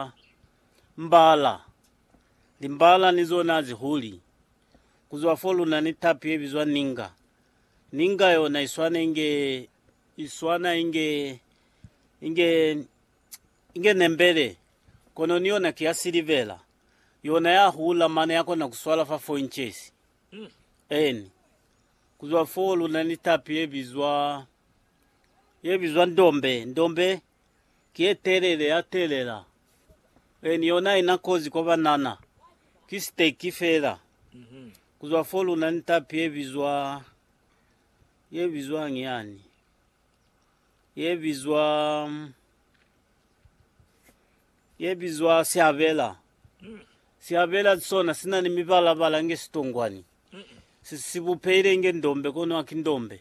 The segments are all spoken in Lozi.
Ba mbala. Limbala ni zona zi huli. Ku zwa fo luna ni tapi ye bizwa ninga. Ninga yona i swana inge, i swana inge, inge, inge nembele, kono ni yona ki ya silivera. Yona ya hula mane ya kona ku swala fa four inches. Eni. Ku zwa fo luna ni tapi ye bizwa, ye bizwa ndombe. Ndombe Kiye telele ya telela e ni yona ina kozi kwa banana. Ki stake fela kuzwa fo luna ni tapi ye bizwa ye bizwang yani ye bizwa ye bizwa siabela. Siabela sona sina ni mibala bala nge sitongwani. Si sibupehile nge ndombe kono haki ndombe.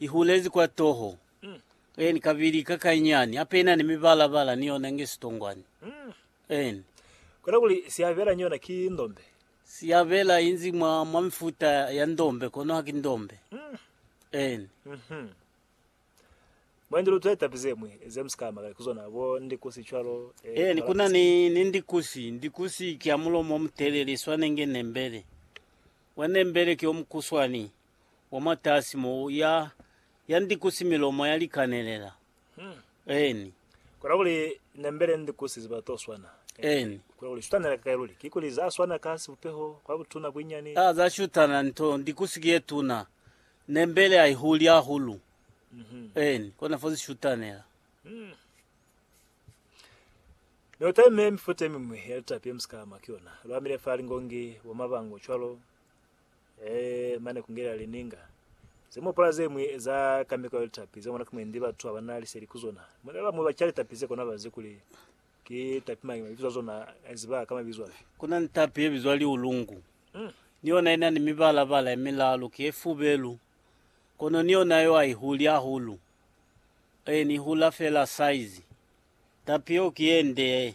I hulezi kwa toho, en, kabili ka kainyani, hape ina ni mibala-bala ni yona nge sitongwani, en. Kona kuli siyabela ni yona ki ndombe. Siyabela inzi mwa, mwa mifuta ya ndombe, kono haki ndombe. En. Mhm. Mwendi lu twetapi zemwi ze mu si ka makali ku zona, bo ndikusi cwalo, eh, En, kuna ni, kalapusi. ni ndikusi. Ndikusi ki ya mulomo omutelele, iswane nge nembele. Mwa nembele ki omukuswani, wa mwatasi mo ya, ya ndikusi milomo ya likanelela. Eni. Kona kuli nembele ndikusi ziba to swana. Eni. Kona kuli shutana lika kai luli. Kikuli za swana ka sibupeho, kwa butuna, buinyani. A, za shutana nto, ndikusi ki ye tuna. Nembele a i huli hahulu. Eni. Kona fo zi shutanela. Mi uteme mifuta yemimwi ya litapi yemusika ama ki yona. Lu amile fa lingongi, bo mabango, cwalo. Ee, mane kungelela lininga zemopola zemwi za kameko ya litapi zemona kumundi batu abana liseli kuzona. Mune bamwi baca litapi zekona bazi kuli ki tapi mangi, mabizo azona aziba ka mabizo afi. Kuna ni tapi yebizwa liulungu. Mm. Ni yona inani mibala-bala yemilalu, ki yefubelu, kono ni yona yo aihuli ahulu. Ee, ni ihula fela saizi. Tapi yeo ki yende.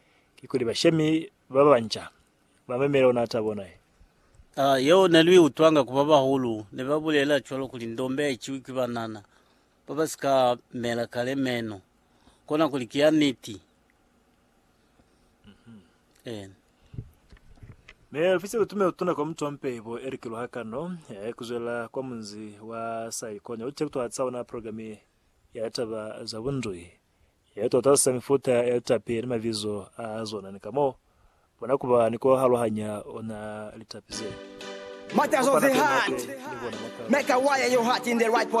Kikuli bashemi ba banca ba memele ona ata bona ye. A Yeo ne lu i utwanga ku ba bahulu, ne ba bulela cwalo kuli ndombe ha i ciwi ki banana ba ba si ka mela kale meno, kona kuli ki ya niti. Eena. Mi ofisi ya lutume lutuna kwa mutu wa mpeibo Eric Luhakano ya ya kuzwela kwa munzi wa Saikonya u cekutwahatsa ona programe ya litaba za bundui. He tota sa mifuta ya litapi ni mabizo a zona ni ka mo bona ku ba ni ku halohanya ona litapi ze. Matters of the Heart, Make a Wire Your Heart in the Right Position.